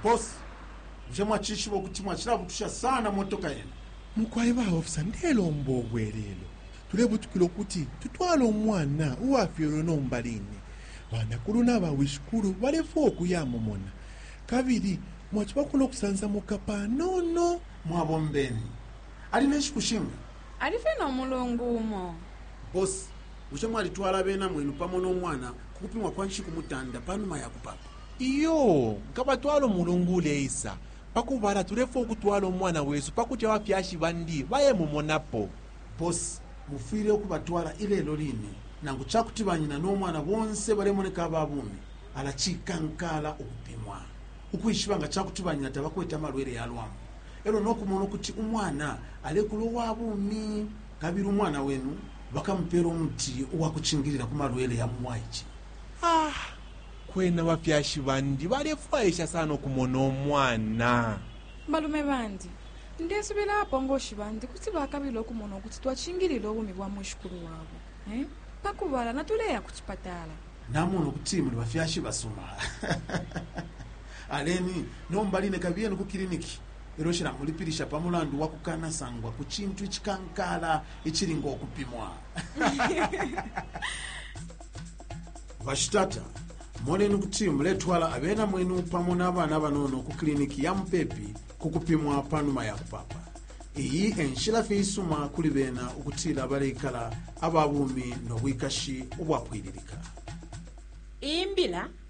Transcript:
Boss, bushe mwacishiba ukuti mwacilabutusha sana motoka yenu? Mukwai ba officer ndelomba ubwelelo. Tulebutukila ukuti tutwale umwana uwafyelwe nomba line. Banakulu naba wishikulu balefwaya ukuya mumona. Kabili mwacibako no kusansamuka panono. Mwabombeni. Ali ne nshiku shinga? Alifye no mulungu umo. Boss, Bushe mwalitwala abena mwenu pamo no mwana ku kupimwa kwa nshiku mutanda pa numa ya kupaapa? Iyoo, nkabatwala umulungu uleisa. Pa kubala, tulefwaya ukutwala umwana wesu pa kuti abafyashi bandi bayemumonapo. Bosi, mufwile ukubatwala ilelo line. Nangu ca kuti banyina no mwana bonse balemoneka aba bumi, ala cikankaala ukupimwa ukwishiba nga ca kuti banyina tabakwete amalwele ya lwambu e lyo no kumona ukuti umwana alekula uwa bumi. Kabili umwana wenu bakamupeela umuti uwa kucingilila ku malwele ya mu bwaice. Ah! Kwena abafyashi bandi balefwaisha sana ukumona umwana. Balume bandi, ndesubila abapongoshi bandi kuti bakabila ukumona ukuti twacingilila ubumi bwa mwishikulu wabo. Eh? Pa kubala, natuleya ku cipatala. Namona ukuti muli bafyashi basuma. Aleni, nomba line kabiyeni ku kiliniki. Lelo shilamulipilisha pa mulandu wa kukanasangwa ku cintu icikankaala icili ngo kupimwa. Bashitata, moneni ukuti muletwala abena mwenu pamo na bana abanono ku kiliniki ya mupepi ku kupimwa pa numa ya kupapa. Iyi e nshila fye isuma kuli bena ukutila baleikala aba bumi no bwikashi ubwapwililika. Iyi mbila